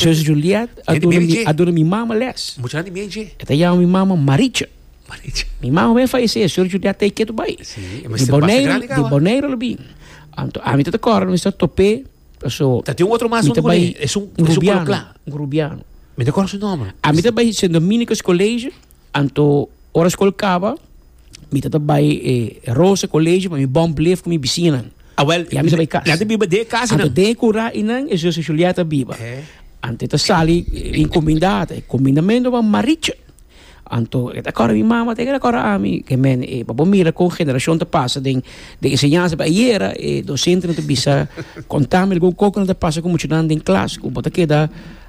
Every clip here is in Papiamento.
Zus Juliet a Gente duna meri mi dje. a duna mi mama les. Mucha handi mei dje. E ta yama mi mama Maricha. Maricha. Mi mama ben fallecé, Sor Juliet ta ikeda bai. Sí, e Di mester basta Bonaire, grande di kawa. Bonaire lo bin. Anto ami ta ta kòrda mi sa topé, paso Ta tin un otro mas mi ta junto bai con e, es un- es un rubiano, coloplá. un rubiano. Mi ta kòrda su nòmber. Ami ta bai Sint Dominicus College. Anto ora skol kaba mi tabata bai e Rosa College pa mi bon bleef ku mi bisiñanan. Awel, Ya mi sa bai kas. nan ta biba den e kasa Anto nan. den e kura i nan e zuster Julietta biba. He. Anto e ta sali inkuminda, e kumindamentu wan Maricha. Anto e ta kòrda mi mama te ke ta kòrda ami ke men e pa bo mira kon generashon ta pasa den den enseñansa pa ayera e dosente nan ta bisa kontami algun kos ku nan ta pasa ku muchanan den klas ku bo ta keda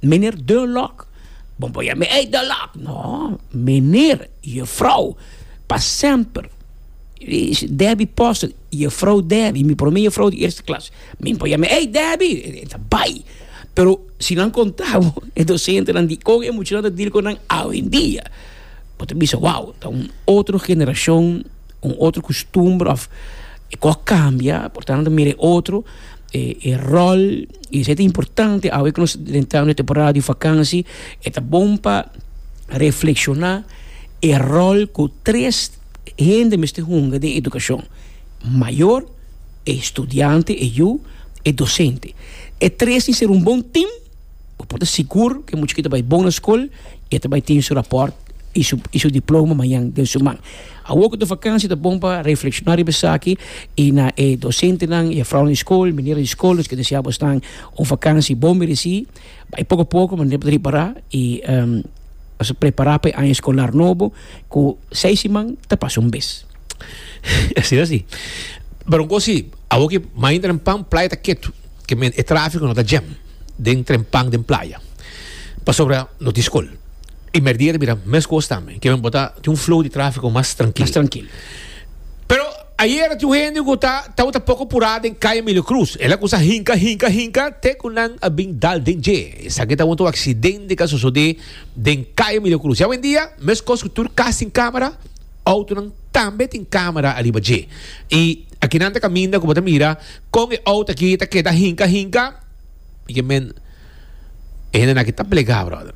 Meneer Dunlock, Bon boya mi, Ey Dunlock! No, meneer, Juffrouw, pa semper. Debbie Postle, Juffrouw Debbie, mi prome juffrouw di eerste klas. Mi boya mi, Ey Debbie! Ta bai. Pero si nan konta bo e dosentenan di kon e muchanan ta dil ku nan awendia, bo ta bisa, Wow, ta un otro generashon. un otro costumbre of e cu a cambia por tanto mira e otro e e rol y esey ta importante awe cu nos drentando e temporada di vakansi e ta bon pa reflexiona e rol cu tres hende mester hunga den educacion mayor e studiante e yu e docente e tres tin ser un bon team Bo por ta sigur ku e muchacho ta bai bon na skol i e ta bai tin su rapòrt i su i su diploma mañan den su man. Awor ku ta vakansia ta bon pa reflekshoná riba esaki i na e dosentenan i e fraunan di skol, minera di skol nos ke desea bo esnan un vakansi bon meresí. Bai poko poko manera bo ta ripará i nos a prepará pa e aña skolar nobo ku seis siman ta pasa un bes. Esei así. Pero un kos si, awor ku mayoritariamen playa ta ketu, ke men e tráfiko no ta djèm. den trempan den playa pasobra no tin skol y merdia ta bira mescos tambe kiba bo ta tin un flow di trafico mas trankil pero ayer tin un hende cu ta tabata poco pura den calle Emilio Cruz el a cusa hinca hinca hinca te cu nan a bin dal den dje esaki ta un accidente cu a sosode den calle Emilio Cruz y awendia mescos cu tur cas tin camera autonan tambe tin camera ariba dje y akinan ta caminda cu bo ta mira Kon e out aki ta keda hinka hinka? Porque men e hende naki ta plegá, brother.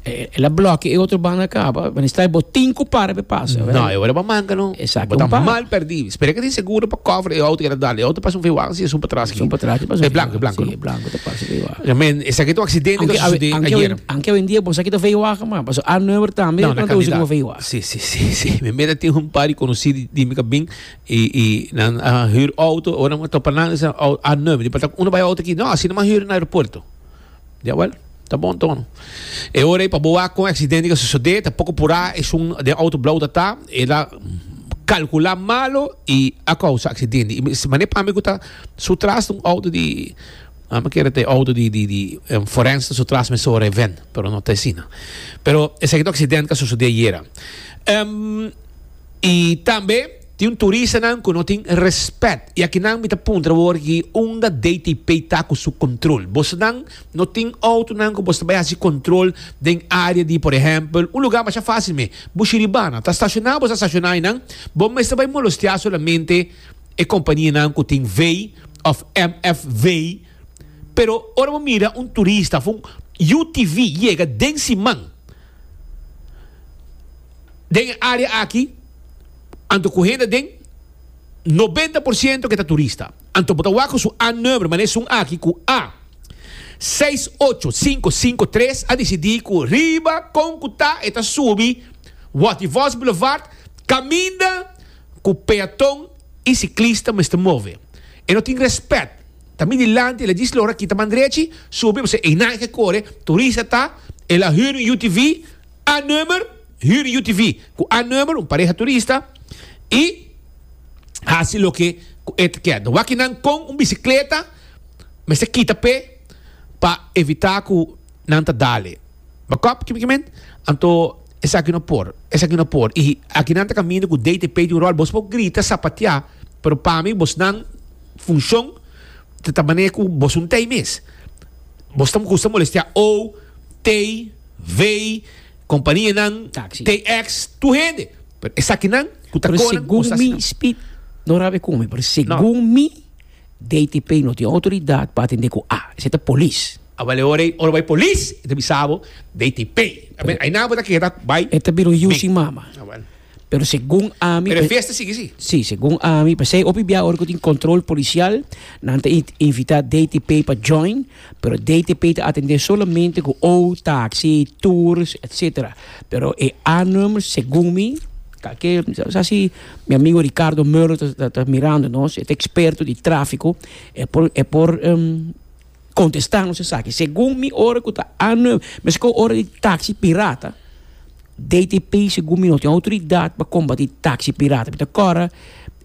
El a bloke e otro banda kaba. Wen is tai bo tin ku para pe pasa. No, e ora ba manka no. Exacto, Bo ta pa. mal perdí. Spera ke tin seguro pa cover e out ke ta dal. E out ta pasa un veiwagen si e sun patrás aki. Sun patrás aki pasa un veiwagen. E blanco, e blanco. Si, e blanco ta pasa un veiwagen. Porque men esaki ta un accidente ku ta susedé ayer. Anke awendia bo sa kita veiwagen m'a. Paso Arnöver tambe ta usa como veiwagen. Si, si, si, si. Mi mira tin un par di conocí di mi ka bin Y y nan a hür auto, ora nan a topa nan esnan au a num di pata uno bai auto aki. No, asina bo a hür na aeropuerto. Ya wel, ta bon tono. E ora ei pa bo wak kon e aksidente ke a sosodé, ta poko purá esun den auto blou ta ta, el a kalkulá malo y a kousa aksidente. Y mester manera pami ku ta su tras ta un auto di, a mi kere ta e auto di di di un forens ta su tras mester ora e ven, pero no ta asina. Pero esaki ta un aksidente ke a sosodé ayera. Y tambe tin un turistanan cu no tin respet. Y aki nan mi ta puntra bo aki unda DTP ta cu su control. Bosonan no tin autonan cu boso ta bay haci control den area di por ehempel un lugar masha facil me, Bushiribana. Ta staciona boso a staciona aynan. Bo mester bay molostia solamente e compania nan cu tin vei of MF vei. Pero ora bo mira un turista of un UTV yega den siman. den e área aki anto ku hende den nobenta por siento ke ta turista. Anto bo ta wak ku su A-number mané esun aki ku A seis ocho sinku sinku tres a disidí ku riba kon ku ta e ta subi Waty Vos Boulevard kaminda ku peaton i siklista mester move. E no tin rèspèt. Ta mi dilanti el a djis logra kita man drechi, subi, bo sa ei nan ke kore, turista ta, el a hür un UTV, A Number, Hür UTV cu A Number, un pareha turista, y haci loke cu e ta kier. Wak y nan con un bicicleta mester kita pe pa evita cu nan ta dale. Bakop, kimen, kimen? Anto esaki no por, esaki no por. Y aki nan ta caminda cu DTP di un rol. Bos por grita, sapatea, pero pa mi bosnan funcion ta ta manera cu bos un tey mes. Bos ta gusta molestea ou, tey. Vei, kompanianan, TX, tur hende. Pero esakinan ku ta konan ku nos ta hasi nan. No rabi kume, pero segun mi, DTP no tin outoridat pa atendé ku a. Esei ta polis. Aba leo rei, ora bo bai polis, e ta bisa bo, DTP. Ainan bo ta keda bai. E ta bira un yusi mama. Pero segun ami, Pero e fiesta sigui si. Sí, segun ami, p'esei hopi bia ora cu tin control policial, nan ta in- invita DTP pa join, pero DTP ta atende solamente cu ou, taxi, tours, etcetera. Pero e A-nummers, segun mi, calke, sa si mi amigo Ricardo Meuler ta, ta, ta mirando nos, e ta experto di trafico, e por, e por, em, Kontestá nos esaki, segun mi ora ku ta año meskó ora di taksi pirata, DTP segun mi no tin outoridat pa kombatí taksi pirata. Mi ta kòrda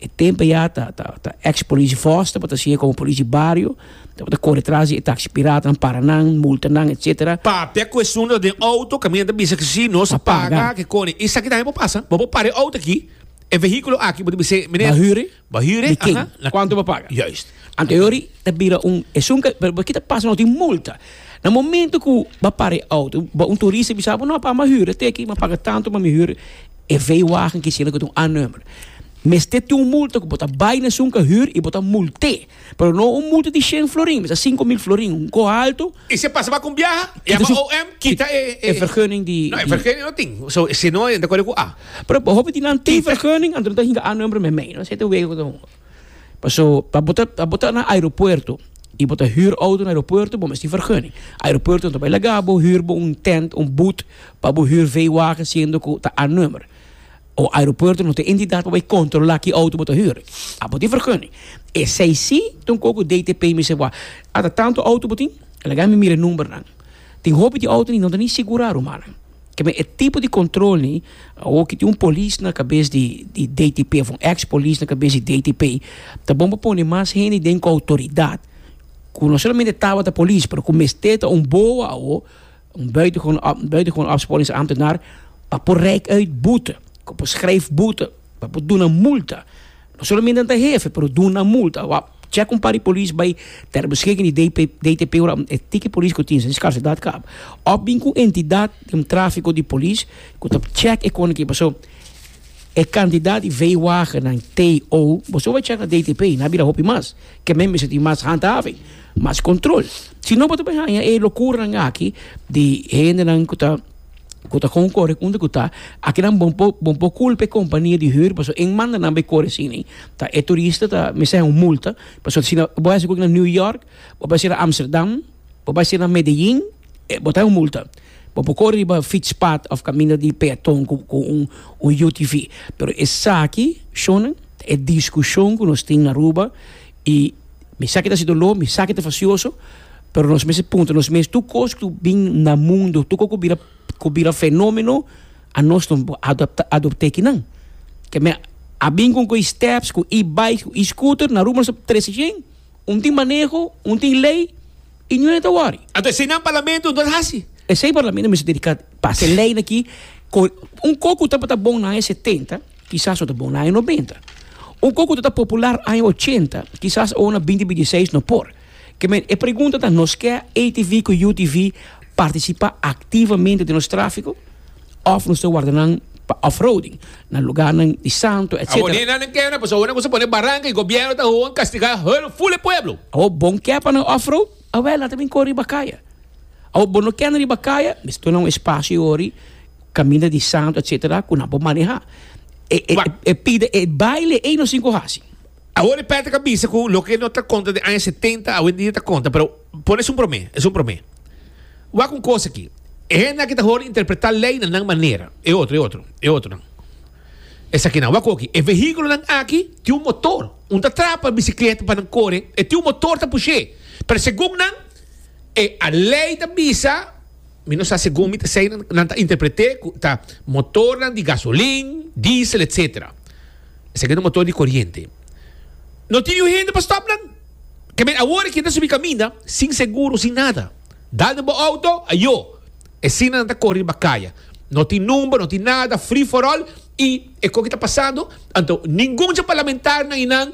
e tempo ya ta ta eks polisi Vos tabata siña komo polisi bario tabata kore tras di e taksi piratanan, para nan, multa nan, etsetera. Papia ku esun ta den outo ku mi ta bisa ku si nos a paga, kikoni? Esaki tambe por pasa. Bo por para e outo aki, e vehíkulo aki, bo ta bisa, Meneer, Ba hire, Di ken? aha, na kuantu bo paga. Juist. Anterior i ta bira un esun ka pero kita pasa no tin multa. Na momento ku ba para e auto, ba un turista i bisa bo no pa mi a hura te aki, mi a paga tantu pa mi hura e veiwagen ki siña ku ta un A-number. Mester tin un multa ku bo ta bai na esun ka hura i bo ta mult'é, pero no un multa di shen florin, bisa sinku mil florin, un gou altu. Y si e pasa pa cu un biaha, e yama OM, kita e, e. E vergunning di. No, e vergunning no tin. So, si no, e ta corre cu A. Pero hopi tin nan tin vergunning, anto no ta hinga A number me mei, no? Esei ta wega cu ta hunga. Paso, pa bo ta, pa bo ta na aeropuerto y bo ta huur auto na aeropuerto, bo mester tin vergunning. Aeropuerto no ta bay laga bo huur bo un tent, un booth, pa bo huur vee wagen siendo cu ta A number. O aeropuerto no ta entidat pa bai kontrolá ki outo bo ta hür. A bo tin vergùning. Esei sí ta un koko DTP mester wak. Ata tantu outo bo tin? Laga mi mira e numbernan. Tin hopi di outonan no ta ni sigurá, rumannan. Keme e tipo di kontrol ni awor ki tin un polis na kabes di di DTP òf un ex polis na kabes di DTP ta bon pa pone mas hende den ku outoridat ku no solamente tabata polis pero ku mester ta un boa awor Un buitengewone opsporings ambtenaar ta por reik uit boete, ta por schrijf boete, ta por duna multa, no solamente nan ta hefe pero duna multa. Wak check un par di polis bai ter beschikking di DTP ora e tiki polis ku tin sin skarsidat kaba of bin ku entidat den trafiko di polis ku ta check e koneki paso e kantidat di veewagennan TO boso bai check na DTP nan a bira hopi mas ke men mester tin mas handhaving. Mas control. Si no bo ta bay haña e locuranan aki di hendenan cu ta cu ta con core unda cu ta. Akinan bo por bo por culpa e compania di huur pasobra e manda nan bay core asina. Ta e turista ta mester haña un multa pasobra si no bo haci esaki na New York bo bay ser na Amsterdam bo bay ser na Medellin e bo ta haña un multa. Bo por core riba fietspad of camino di peaton cu cu un un UTV pero esaki shunnan ta e discusion cu nos tin na Aruba. I mi sa ke ta si doló, mi sa ke ta fasioso, pero nos mester puntra nos mes, tur kos ku bin na mundu, tur kos ku bira ku bira fenómeno, a nos no por adaptá adopt'é kinan? Ke men a bin kon ku e-steps, ku e-bikes, ku e-scooter, na Rumo nos ta trese shen, un tin maneho, un tin lei, i ñu'e ta wòri. Anto esei nan parlamento anto ta hasi. Esei parlamento mester dediká pas. Te leinan aki, kon un kos ku tabata bon na aya setenta. Kisas no ta bon na aña nobenta. Un kos ku ta popular aña ochenta, kisas awo na binti binti seis no por. Ke men e pregunta ta, nos ke ATV ku UTV partisipá aktivamente den nos tráfiko òf nos ta warda nan pa off-roading na lugarnan di santo, etcetera. Awor ni eynan nan kèna, pasobra awor nan kumsa pone baranka i gobièrnu ta hoon kastigá hul ful e pueblo. Awor bon kè pa nan off-road? Awel, a ta bin kore riba kaya. Awor, bo no kende riba kaya, mi ta duna un espasio yori, kaminda di santu, etsetera, ku nan por manehá. E, e, Wak. e pida e baile ei nos tin ku hasi. Awor e Patrick a bisa ku loke no ta konta den aña setenta awendia ta konta, pero pon esun promé, esun promé. Wak un kos aki, e hende aki ta horen interpretá lei na nan manera, e otro, e otro, e otronan. Esakinan, wak hoki, e vehíkulonan aki tin un motor. Un ta trapa bicicleta pa nan core, e tin un motor ta pushe. Pero segun nan, e a ley ta bisa, mi no sa segun mi ta sei nan ta interprete cu ta motornan di gasolin, diesel etc. Esaki ta motor di coriente. No tin niun hende pa stop nan. Kemen awor e keda subi caminda sin seguro, sin nada. Dal den bo auto, ayo. E sina nan ta kore riba kaya. No tin number, no tin nada, free for all. I e koki ta pasando, anto ningun dje parlamentario nan i nan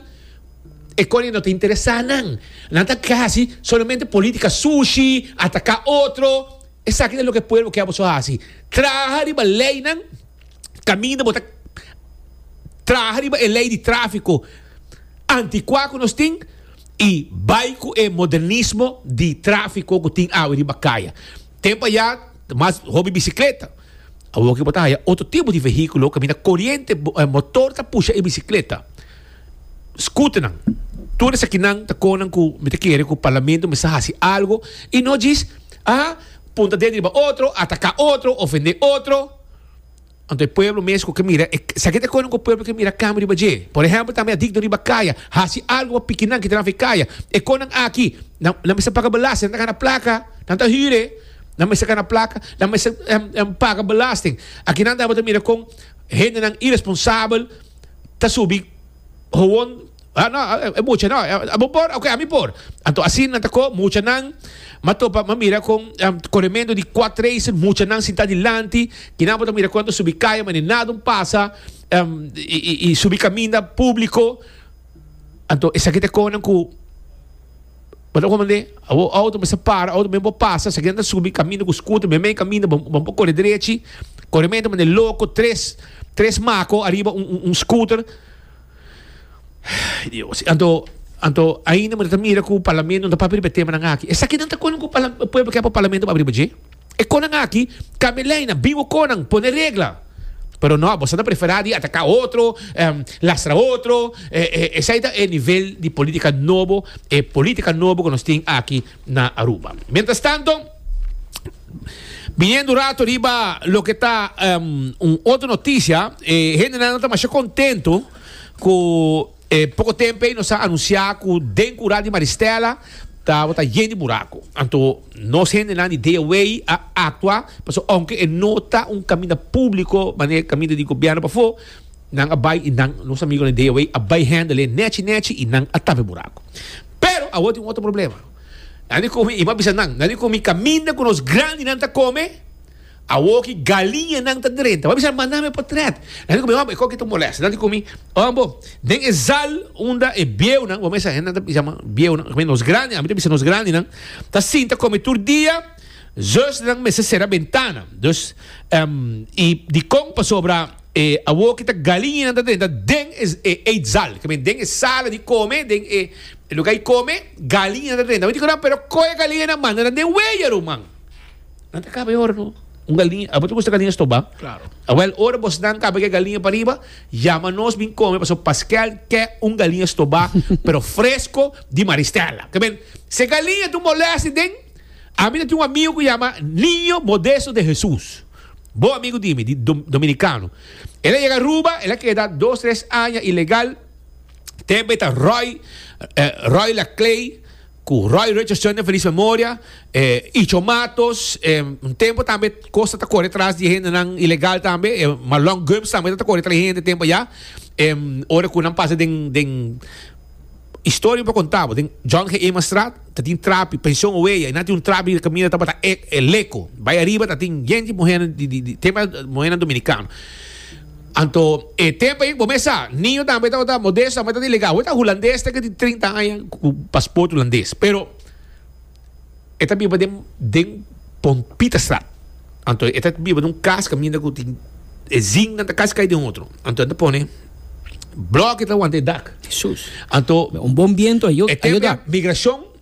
economy no ta interesa nan. Nan ta hasi solamente politica sushi, ataca otro. Esaki ta loke pueblo ke a boso hasi. Traha riba leynan. caminda bo ta traha riba e ley di trafico anticua cu nos tin y bay cu e modernismo di trafico cu tin awe riba caya. Tempo aya ta mas hopi bicicleta, awoke bo ta haya otro tipo di vehiculo caminda coriente, motor ta pusha e bicicleta, scooternan, tur esakinan ta conan cu mi ta kere cu parlamento mester haci algo y no djis, ah, punta ded riba otro, ataca otro, ofende otro. Anto e pueblo mes cu ke mira, e esaki ta konen cu e pueblo ke mira cambio riba dje. Por ehempel tambe a digno riba kaya, haci algo pa pikinan ki ta nafe kaya. E con nan aki, nan nan mester paga belasting, nan ta gana placa, nan ta hire, nan mester gana placa, nan mester paga belasting. Aki nan tambe ta mira con hende nan iresponsabel ta subi. Gewoon, ah no, e mucha no, bo por? Ok, ami por. Anto asin nan ta ko muchanan, ma topa, ma mira kon korementu di kwat racer, muchanan sintá dilanti, kinan bo ta mira kuantu subi kaya ma ni nada un pasa, i subi kaminda públiko. Anto esaki ta konan ku. Bo ta hopi mende, bo auto mester para, auto mester por pasa, si algén ta subi kaminda ku skuter, meme i kaminda bo no por kore derechi, kore mente mende loko, tres, tres mako ariba un, un, un skuter, Dios, anto, anto ainda bo ta mira ku parlamento no ta papia riba e temanan aki. Esakinan ta kon ku pala, pueblo ke por parlamento por papia riba dje? E konan aki ka mi leinan, bin bo konan pone regla. Pero no, boso ta preferá di ataká otro, lastra otro, esei ta e nivel di polítika nobo, e polítika nobo ku nos tin aki na Aruba. Mientrastanto, biniendo un rato riba loke ta un otro notisia, e hendenan no ta masha kontentu ku. E poko tempu ei nos a anunsiá ku den kural di Maristella tabata yen di buraku. Anto nos hendenan di Deya Wei a aktua pasobra ounke e no ta un kaminda públiko manera kaminda di gobièrnu pafó, nan a bai i nan, nos amigunan di Deya Wei, a bai hèndel e nèchi nèchi i nan a tap e buraku. Pero awor tin un otro problema. Nan di ku mi, i mi a bisa nan, nan di ku mi kaminda ku nos grandinan ta kome, Awor ki galiña nan ta drenta. Bo a bisa, Manda mi potret. Nan di ku mi, Homber, e koki ta molesta. Nan di ku mi, Oon bo, den e zal unda e bieunan, bo mester hende nan ta bisa bieunan, oca ki nos grandi, ami ta bisa nos grandinan, ta sinta komi tur dia, zes nan mester sera bentana. Dus, i dikon pasobra e awor ki ta galiña nan ta drenta den e eetzal, ke men den e sala di kome, den e luga di kome, galiña nan ta drenta. Bo a bisa, Pero kon e galiña nan manda nan den wei, e ruman? Nan ta kaba e ora no. Un galiña, abo ta gusta galiña stoba? Claro. Awel, ora bosnan kaba ke galiña pariba, yama nos bin kome, pasobra Paskel ke un galiña stoba, pero fresko di Maristela. Ta bini, si e galiña ta un molèster den, ami ta tin un amigu ku yama Niño Modesto de Hesus, bon amigu di mi, di dom, dominikano. El a yega Aruba, el a keda dos, tres aña ilegal, tempo e ta ròi, eh, ròi la klei, Ku Roy Richardson den felis memoria, e Icho Matos, e un tempu tambe Costa ta kore tras di e hendenan ilegal tambe, e Marlon Gumbs tambe ta ta kore tras di e hende tempu eya. E ora ku nan pasa den, den historia mi por konta bo, den John G. Emanstraat ta tin trapi, pension Oweya, i nan tin un trapi di kaminda tabata e Leco. Bai ariba tatin yende di muhernan di, di, di, te mas muhernan dominikano. Anto e tempo ei bo mester sa, niño tambe tabata modesto, tabata di legado. E ta hulandes te ke di trinta aña ku pasport hulandes, pero e ta biba den den Pompitastraat. Anto e ta biba den un kas kaminda ku tin e zingnan ta kas kai den otro. Anto nan ta pone bloke ta wanta e dak. Jesús! Anto, Un bon biento a yo, e a yo tempo ei dak. migrashon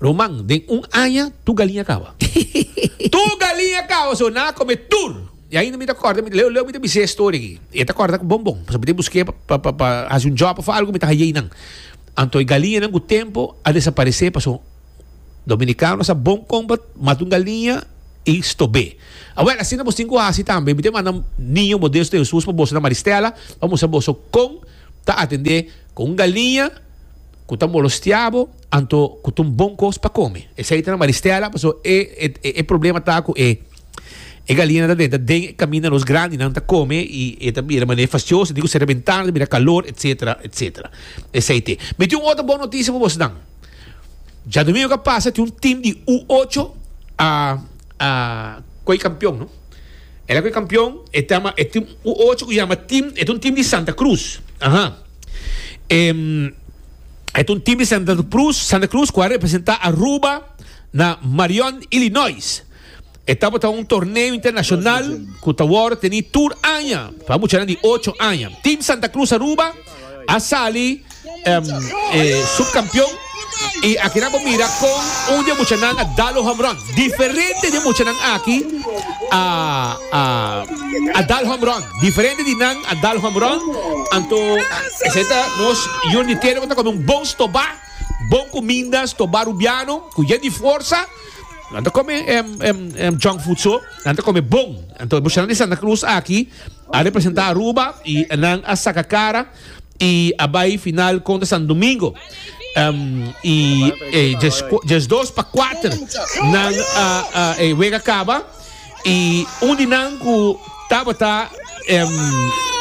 Roman, den un aña tur galiña kaba. Tur galiña kaba, so nan a kome tur. I ainda mi ta kòrda, mi ta leu leu mi ta bisa e storia aki. I e ta kòrda ku bon bon, pasobra mi ta busk'é pa pa pa hasi un jòb òf algu, mi ta hañ'é nan. Anto e galiñanan ku tempu a desaparesé paso dominikanonan sa bon kòmpa mata un galiña i stob'é. Awèl, asina boso tin ku hasi tambe. Mi ta manda Niño Modesto di Hesus pa boso na Maristela pa mustra boso kon ta atendé ku un galiña ku ta molostiá bo. Anto cu ta un bon cos pa come. Esey ta na Maristella paso e e problema ta cu e e galina ta denta den e caminda nos grandinan ta come y e ta bira mane fastioso dico cera bentana ta bira calor etcetera etcetera esey te. Mi tin un otro bon noticia pa bos nan. Djadomingo ca pasa tin un team di U ocho a a coy campeon no. El a coy campeon e ta ama e team U ocho cu yama team e ta un team di Santa Cruz aha e. E ta un team di Santa Cruz, Santa Cruz cu a representa Aruba na Marion, Illinois. E tabata un torneo internacional cu ta worde teni tur aña pa muchanan di ocho aña. Team Santa Cruz Aruba a sali em, eh, subcampeon y aki nan bo mira con un di e muchanan a dal un home run. Diferente di e muchanan aki a, a, a dal home run. Diferente di nan a dal home run, anto esei ta nos Jun di Tele ku ta kome un bon stobá, bon kuminda, stobá rubiano ku yen di forsa. Nan ta kome e junk food so, nan ta kome bon. Anto e bushonnan di Santa Cruz aki a representá Aruba i nan a saka kara y a bay final contra San Domingo y dies dos pa cuater nan e wega caba y un di nan cu tabata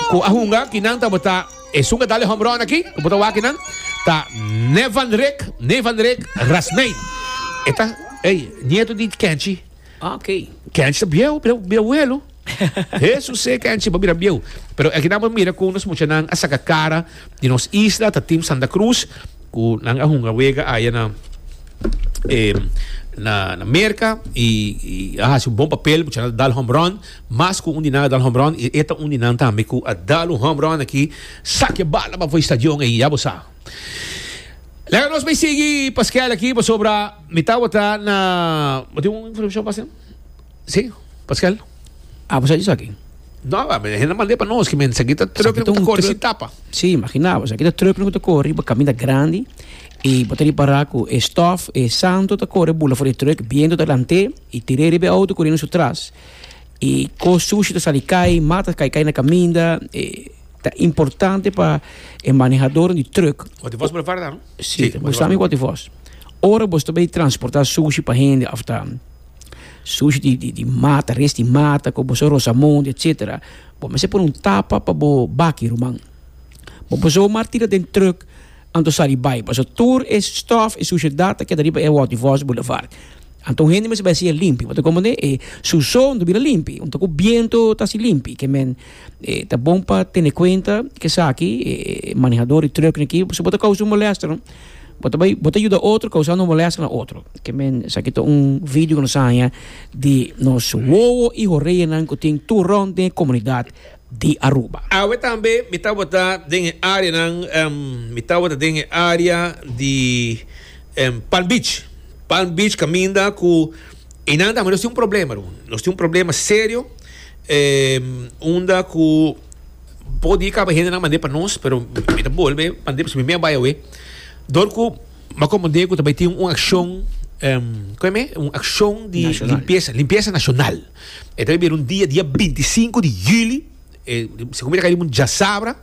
cu a hunga ki nan tabata esun a dale hombron aki cu bo ta wak kinan ta Nevanrek Nevanrek Rasmijn e ta nieto di Kenchi. Oké. Kenchi ta bieu, bieuelu. Hesus e kenchi bo bira bieu. Pero aki nan bo mira ku nos muchanan a saka kara di nos isla, ta Team Santa Cruz, ku nan a hunga wega aya na na na Merka i i a hasi un bon papel, muchanan a dal hombron, mas ku un di nan a dal hombron i e ta un di nan tambe ku a dal un hombron aki sakia bala bafo e stadion ei, ya bo sa. Laga nos bai sigui paskèl aki pasobra. Mi tabata na... Bo tin un informacion pa hacen? Si, Pascal? Abo sa esaki? No, a mi hende a mand'é pa nos ki men esaki ta truck loke ta corri sin tapa. Si, imagina bo, esaki ta truck loke ta corri pa caminda grandi y bo ta ripara cu e stof, e santo ta corre bula for di e truck, biento ta lant'é y tir'é riba e auto curiendo su tras y cos sushi ta sali cay, mat ta cay cay na caminda. Ta importante pa e manehadoren di truck. Bo tin vos prepara, no? Sí, bo sabe wat e fos. Ora bo ta bay transporta sushi pa hende of ta sushi di, di, di mata, res di mata, ku bo so rosamonde, etcetera. Bo mester pone un tapa pa bo baki, ruman. Bo por zomaar tira den truck anto sali bay. Paso tur e stof, e sushedad ta keda riba e wat e fos boulevard. Anto un hende mester bay hasiel limpi. Bo ta komo ne e suso no ta bira limpi. Un ta ku biento ta hasi limpi. Ke men. E ta bon pa tene kuenta ku esaki e manehador di trùknan aki si bo ta kousa un molèsta no bo ta bai bo ta yuda otro kousando molèsta na otro ke men esaki ta un vidio ku nos a haña di nos wowo i horeanan ku tin tur rònt den e komunidat di Aruba. Awe tambe mi tabata den e areanan mi tabata den e area di Palm Beach Palm Beach kaminda ku. I nan tambe nos tin un problema Ruben. Nos tin un problema serio em, unda ku po di kaba hendenan mandé pa nos, pero mi ta bolbe mandé pasobra mi a bai awe. Dor ku ma komprendé ku ta bai tin un akshon em kue me un akshon di National. limpiesa, limpiesa nasional. E ta bai bira un dia dia 25 di juli, e si kumita kai mun jasabra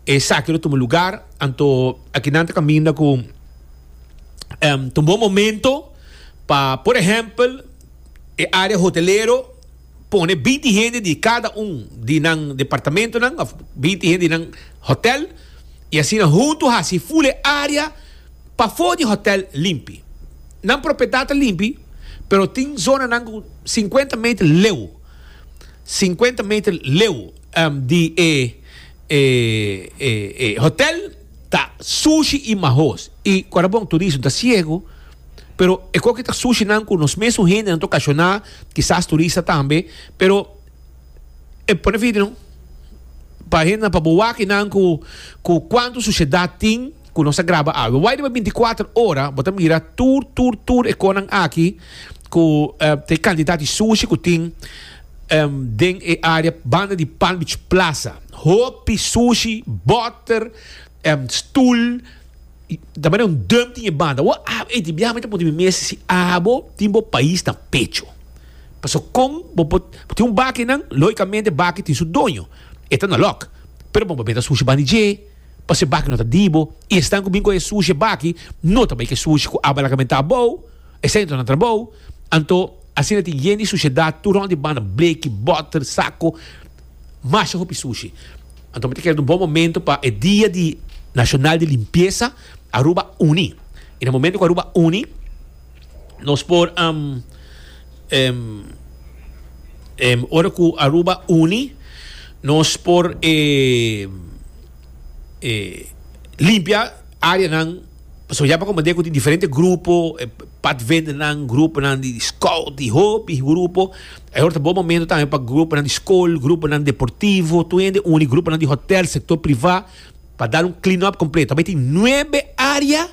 e saki lo tuma lugar, anto aki nan ta kaminda ku em ta un bon momento Pa por ehempel e area hotelero pone binti hende di kada un di nan departamentonan of binti hende di nan hotel y asina hunto haci full e area pafo di hotel limpi. Nan propiedad ta limpi pero tin zonanan cu cincuenta meter leu cincuenta meter leu di e hotel. Ta sushi y mahos. Y cuando bon turismo ta ciego, pero e coki ta sushi nan cu nos mesun hende nan ta ocasiona, kisas turista tambe, pero e pone fiti no. Pa hende nan pa bo wak nan cu cu cuanto suciedad tin cu nos ta graba awe. Wai riba binti kuater ora bo ta mira tur tur tur e conan aki cu ta e cantidad di sushi cu tin den e area banda di Palm Beach Plaza. Hopi sushi, boter, stoel, ta mane un dum tin e banda. Bo a ey di biaha mi ta puntra mi mes si abo tin bo pais na pecho. Paso con bo por bo tin un baki nan logicamente baki tin su doño e ta na lock pero bo por mete sushi bandi dje paso e baki no ta di bo y esnan cu bin cu e sushi e baki no ta bay ke sushi cu a balakamentá abou esey anto nan trabou anto asina tin yen di sushedad tur rond di banda bleki boter saco. masha hopi sushi. Anto mi ta kere ta un bon momento pa e dia di nacional di limpieza Aruba uni. Y na momento cu Aruba uni nos por um, um, um, ora cu Aruba uni nos por eh, eh, limpia areanan. Pasobra ya pa komand'é ku tin diferente grupo, e padvendernan, gruponan di skout, di hopi grupo. Awor ta bon momentu tambe pa gruponan di skol, gruponan deportivo, tur hende uni, gruponan di hotèl, sektor privá, pa dal un clean up kompleto. Bai tin nuebe área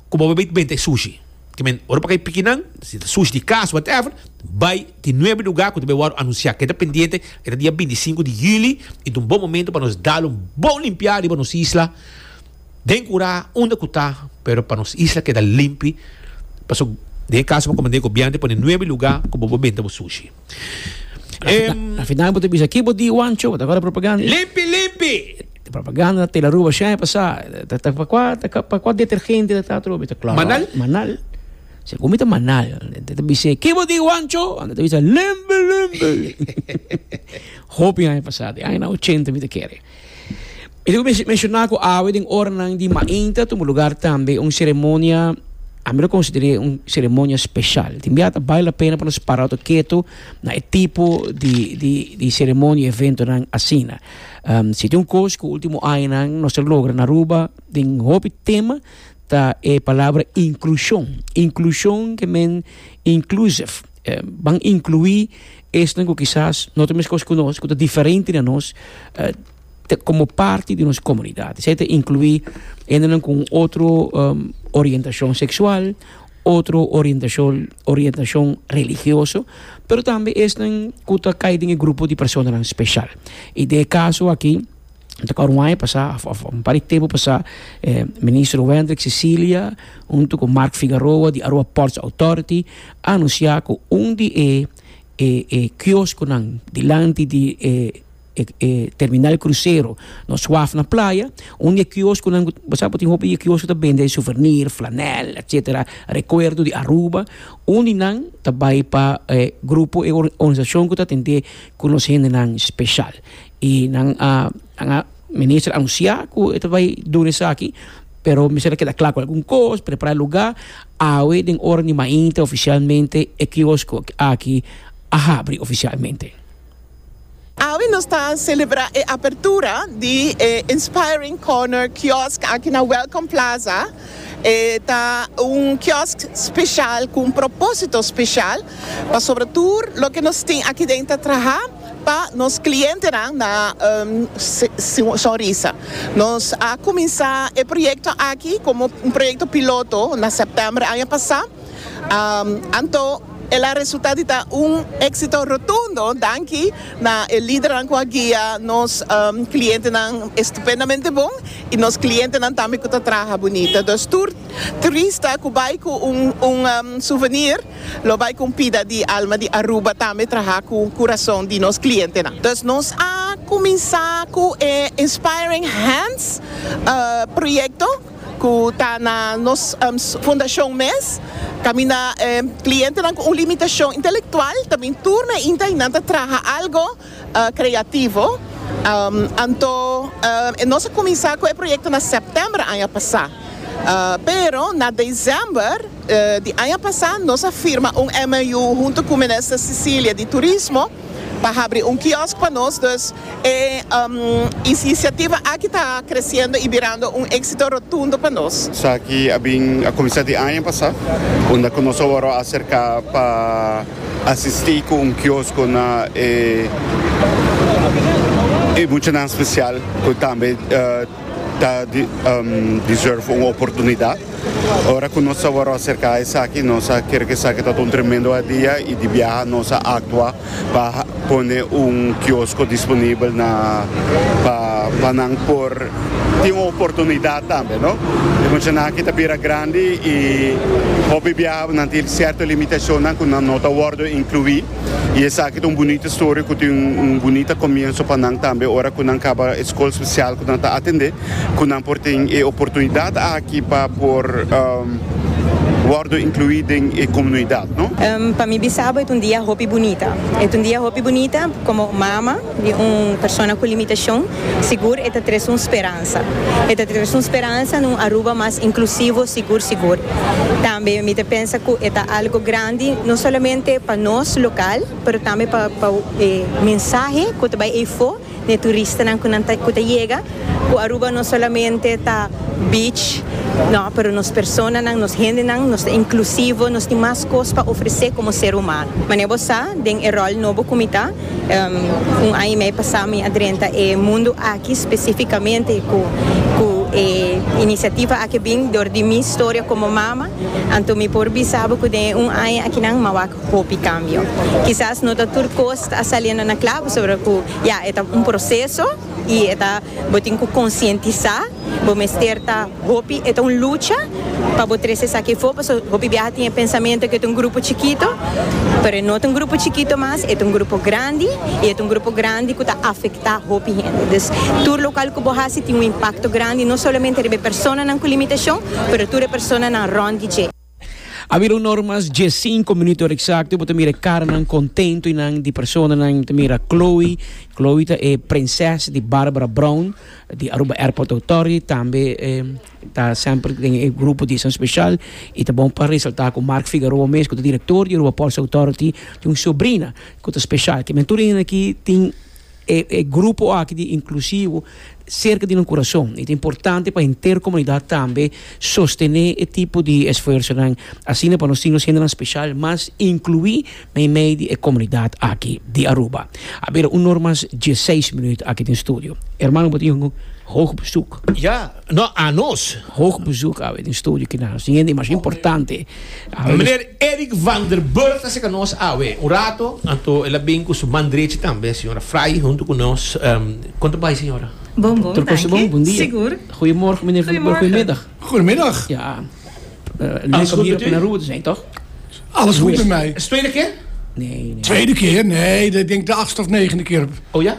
ku bo bai benta e sushi. Te men, ora pa kai pikinan, si ta sushi di kas, whatever, bai tin nuebe lugá ku ta bai wòrdu anunsiá. Keda pendiente, e ta dia bintisinku di yüli, i ta un bon momentu pa nos dal un bon limpiá riba nos isla. Den curá unda cu ta pero pa nos isla keda limpi paso den e caso bo comand'e gobierno ta pone nuebe luga cu bo bo benta bo sushi em. Na final bo ta bisa ki bo di Juancho bo ta gora propaganda. Limpi limpi. E propaganda ta tela Aruba shai pasá ta pa cua pa cua detergente ta ta atrobe ta clorol Manal. Manal segun mi ta manal ta ta bis'e ki bo di Juancho anta ta bisa limpi limpi hopi aña pasá den aña na ochenta mi ta kere. Esaki ku menshona ku awe den oranan di mainta a tuma lugar tambe un seremonia, ami lo konsider'é un seremonia speshal. Tin bia ta bale la pena pa nos para ato ketu na e tipo di di di seremonia, eventonan asina. Si tin un kos ku ultimo añanan nos ta logra na Aruba den hopi tema ta e palabra inklushon, inklushon ke men inclusive. Ban inkluí esnan ku kisas no ta meskos ku nos, ku ta diferente di nos, komo parti di nos komunidat. Esei ta inkluí hendenan ku un otro orientashon seksual, otro orientashon orientashon religioso, pero tambe esnan ku ta kai den e grupo di personanan speshal. I den e kaso aki. Ta kor un aña pasá of of un par di tempu pasá e Minister Wendrick Cecilia huntu ku Marc Figaroa di Aruba Ports Authority a anunsiá ku un di e e e kioskonan dilanti di e e e terminal krusero nos waf na playa un di e kioskonan ku bo sa ku tin hopi di e kiosko ta bende suvernier, flanèl etsetera rekuerdo di Aruba un di nan ta bai pa e grupo e organisashon ku ta atendé ku nos hendenan speshal. I nan a nan a minister a anuncia cu e ta bay duna esaki pero mi ser a keda cla cu algun cos prepara e lugar awe den ora di mainta oficialmente e kiosco aki a habri oficialmente. Awe nos ta celebra e apertura di e Inspiring Corner kiosk aki na Welcome Plaza e ta un kiosk special cu un proposito special pasobra tur loke nos tin aki den ta traha Pa nos clientenan na Sonrisa. Nos a cuminsa e proyecto aki como un proyecto piloto na septiember aña pasa, anto el a resulta di ta un exito rotundo danki na e lidernan cu a guia nos clientenan estupendamente bon y nos clientenan tambe cu ta traha bunita. Dus tur trista cu bay cu un souvenir. Lo bay cu un pida di Alma di Aruba tambe traha cu curason di nos clientenan. Entonces nos a cuminsa cu e Inspiring Hands proyecto cu ta na nos fundacion mes. Caminda e clientenan cu un limitacion intelectual ta bin tur na inta y nan ta traha algo. Creativo, anto e nos a cuminsa cu e proyecto na september aña pasa, pero na december di aña pasa nos a firma un MOU hunto cu Minister Cecilia di Turismo pa habri un kiosk pa nos, dus e iniciativa aki ta creciendo y birando un exito rotundo pa nos. Esaki a bin a cuminsa di aña pasa, unda cu nos a wor a acerca pa. Asisti cu un kiosko na e muchanan special cu tambe ta deserve un oportunidad. Ora cu nos a wòrdu acerca esaki nos a kere cu esaki ta ta un tremendo idea y di biaha nos a actua pa pone un kiosko disponibel na pa nan por tin un oportunidad tambe no. E muchanan aki ta bira grandi y hopi biaha. Nan tin sierto limitacionnan cu nan no ta wordo inclui y esaki ta un bunita story cu tin un bunita comienzo pa nan tambe ora cu nan caba e scol special cu nan ta atende cu nan por tin e oportunidad aki pa por wordo inclui den e comunidad. Pa mi bisabo e ta un dia hopi bunita. E ta un dia hopi bunita como mama. Di un persona cu limitacion, sigur e ta trece un speransa. E ta trece un speransa na un Aruba mas inclusivo, sigur sigur. Tambe mi ta pensa cu e ta algo grandi no solamente pa nos local, pero tambe pa pa e mensahe cu ta bay eyfo na e turistanan cu nan ta cu ta yega, cu Aruba no solamente ta beach, no, pero nos personanan, nos hendenan, nos ta inclusivo, nos tin mas cos pa ofrece como ser humano. Mane bo sa den e rol nobo cu mi ta. Un aña y medio pasá mi a drenta e mundu aki specificamente cu e iniciativa aki bin dor di mi storia como mama, anto mi por bisa bo cu den e un aña akinan m'a wak hopi cambio. Kisas no ta tur cos ta a saliendo na claro pasobra cu ya e ta un proceso. y e ta bo tin cu concientisa bo mester ta hopi e ta un lucha pa bo trece esaki e for pasobra hopi biaha tin e pensamento que e ta un grupo chikito pero e no ta un grupo chikito mas e ta un grupo grandi y e ta un grupo grandi cu ta afecta hopi hende dus tur local cu bo haci tin un impacto grandi no solamente riba e personanan cu limitacion pero tur e personanan rond di dje. A bira un or mas dies sinku minuto ora eksakto i bo ta mira e karanan kontentu i nan di personanan. Mi ta mira Chloe, Chloe ta e prinses di Barbara Brown di Aruba Airport Authority, tambe e ta semper den e grupo di esan speshal. I ta bon pa resaltá ku Mark Figueroa mes ku ta direktor di Aruba Ports Authority tin un sobrina ku ta speshal. Ke men tur a yanda aki tin. E e grupo aki di inklusivo serka di nan kurason i ta importante pa henter komunidat tambe sostené e tipo di esfuersonan asina pa nos tin nos hendenan speshal mas inkluí meimei di e komunidat aki di Aruba. A bira un nor mas dieseis minüt aki den studio. Hermano bo tin hoog bezoek. Ja. No a nos. Hoog bezoek awe den studio kina nos tin hende mas importante. Meneer Eric van der Burg ta serka nos awe un rato, anto el a bin ku su man drechi tambe señora Frei hunto ku nos. Kon ta bai señora? Bon bon, danki. Sigur. Goeiemorgen meneer van der Burg, goeiemiddag. Goedemiddag. Ja, leuk om hier op Naroer te zijn toch? Alles goed met mij. Is tweede keer? Nee, nee. Tweede keer? Nee, ik denk de achtste of negende keer. Oh ja?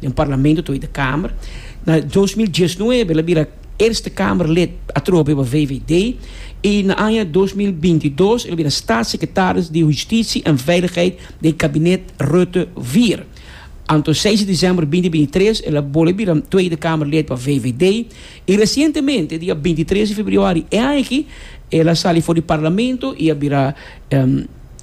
den Parlamento Tweede Kamer. Na dos mil diesnuebe el a bira Eerste Kamerlid atrobe pa VVD i na aña dos mil binti dos el a bira Staatssekretaris di Hustitie en Veiligheid den kabinet Rutte vier. Anto seis di desèmber binti binti tres el a bolbe bira Tweede Kamerlid pa VVD i resientemente dia binti tres di febrüari e aña aki el a sali for di Parlamento i a bira